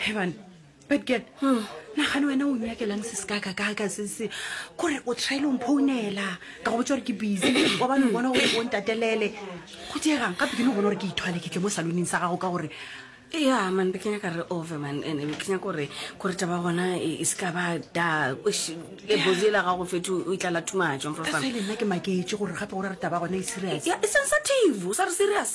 heban bad girl hmm. nagane wena o nyakelang se se kakakaka se se kore o traile o mphounela ka go botsa gore ke busy wa bane o bona gore o ntatelele go diegang gape ke ne o bona gore ke ithwale ke tle mo saloning sa gago ka gore ya man be kenya ka re over man ande be kenya kore kore taba gona e, e se ka ba da le bozi la gago fetho o itlala thumatso nna ke maketse gore gape gore re taba gona e serious ya e sensitive o sa re serious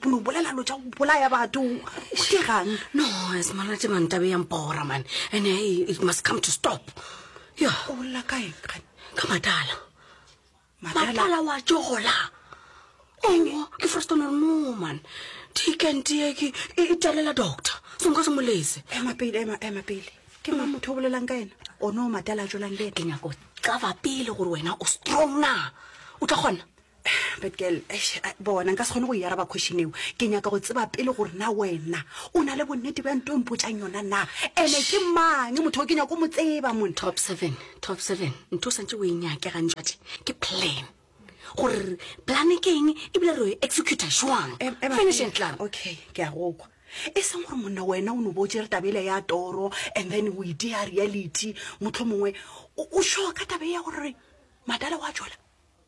bono bolela lo tša go bolaya batho ke gang no semana tše mantabe yang bora man and eh, it must come to stop yo o bolela kae kgane ka matala matala wa tšogola oo ke frostone re no man tikentiye ke e e talela doctor senka se molese ema pele ema ema pele ke ma motho o bolelang ka ena o ne o matala a tšwelang le ke nyako cava pele gore wena o strong na o tla kgona but girl bona nka se kgone go e araba question eo ke nyaka go tseba pele gore na wena o na le bonnete bja nto mpotšang yona na ene ke mang motho o ke nyako mo tseba mon top seven top seven ntho o santse o e nyake gantšwate ke plan gore plane ke eng ebile re executa jwang e, e finish and clam okay ke a gokwa e seng gore monna wena o no bo tsere tabele ya toro and then o ite ya reality motlho mongwe o sure ka tabe ya gore madala wa jola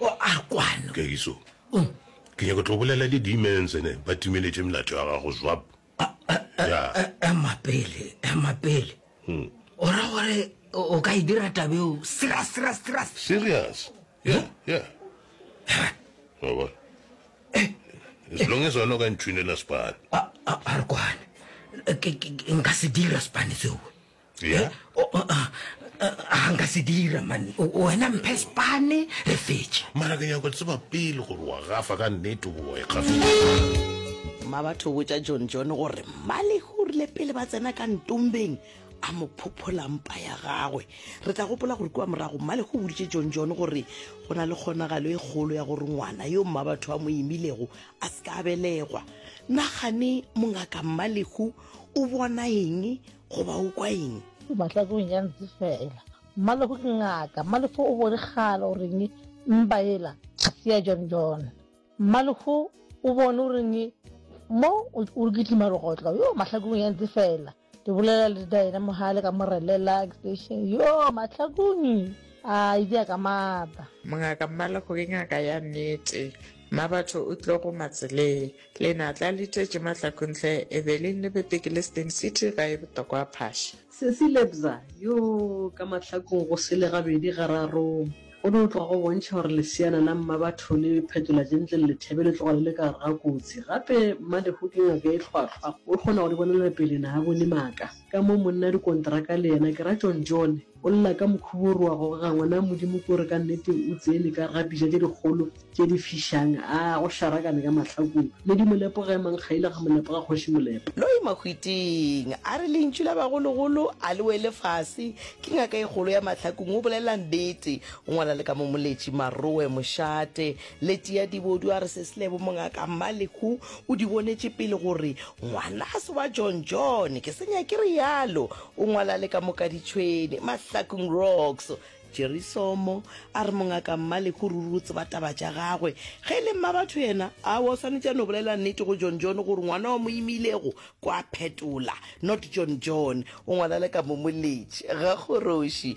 o a kwano kekiso ke nyako tlo bolela le demons ene ba timeletše melato ya gago zwap ema pele ema pele hmm. o ra gore o ka e dira tabeo serious serious serious serious yeah yeah wa eh. as long as wena o ka ntshunela spane a re kwane nka se dira spane seo Yeah. O- o- a- a- a nka se dira man wena mphe spane re fetše mara ke nyako tseba pele gore wa gafa ka nnete goba wa ikgafisa mma batho botša john john gore mmalege o rile pele ba tsena ka ntombeng a mo phophola mpa ya gagwe re tla gopola gore kua morago mmalege o boditše john john gore go na le kgonagalo e kgolo ya gore ngwana yo mma batho a mo imilego a se ka a belegwa nagane mongaka mmalego o bona eng goba o kwa eng o batla ke go nyantse fela mmalefo ke ngaka mmalefo o bone gala o reng mpa ela ya john john mmalefo o bone o reng mo o re kitlima legotlo yo mahlakong ya ntse fela ke bolela le daena mogale ka morelela station yo mahlakong a idi ya ka mata mongaka mmalefo ke ngaka ya nnete mma batho o tlo go matseleng Lenatla le tletše matlakontle e be le nnebete ke le Stain City ga e botokwa phaša. Sesi Lebza, Yoo, ka mahlakong go sele gabedi gararong. Go no tloga go bontšha gore leseana la Mmabatho le phetola gentle le lethebe le tloga le le ka gare ga kotsi. Gape Mmalehu ke ngaka e hlwahlwa, o kgona go di bonela pele na a bone maaka. Ka mo monna dikonteraka le yena ke Ratšong John. O lla ka mokhuba o re wa goga ngwana wa Modimo ke gore ka nnete o tsene ka rapija tše dikgolo tše di fišang, a go hlarakane ka mahlakong. Ledi Molepo ga e mankgaile ga Molepo ga Kgoši Molepo. Loyi Mahwiting a re lentšu la bagologolo a le wele fase, ke ngaka e kgolo ya mahlakong o bolela nnete, o ngwala le ka mo Moletši Maroe Mošate. Leti ya Dibodu a re Seslebo mongaka Mmalehu o di bonetše pele gore ngwana a se wa John John, ke se nyake realo. O ngwala le ka moka ditšhwene, mahlakong, rocks. Jerry Somo a re mongaka Mmaleko ruri o tseba taba tša gagwe. Ge e le mmabatho yena, awa o swanetše a no bolela nnete go John John gore ngwana wa mo imilego kwa phetola, not John John. O ngwala le ka momoletši, gakgoroši.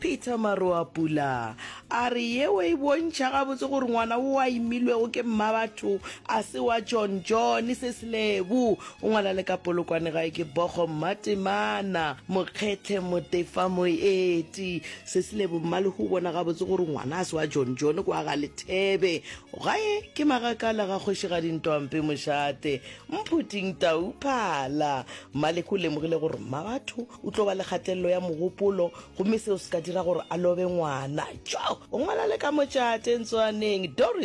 Peter Maroapula a re yeo e bontšha gabotse gore ngwana wo a imilwego ke mmabatho a se wa John John se Selebu o ngwala le ka polokwane gae ke Bogo Mmatemana Mokgethe Motefa Moeti se Selebu Mmalehu o bona gabotse gore ngwana a se wa John John kwa ga Lethebe gae ke Magakala ga Kgošigadi Ntwampe Mošate Mphuting Tauphala Mmalehu o lemogile gore mmabatho o tlo ba le kgatelelo ya mogopolo gomme seo se ka dira gore a lobe ngwana. Tjo! Ngwana le ka mo tšate ntswaneng. Doris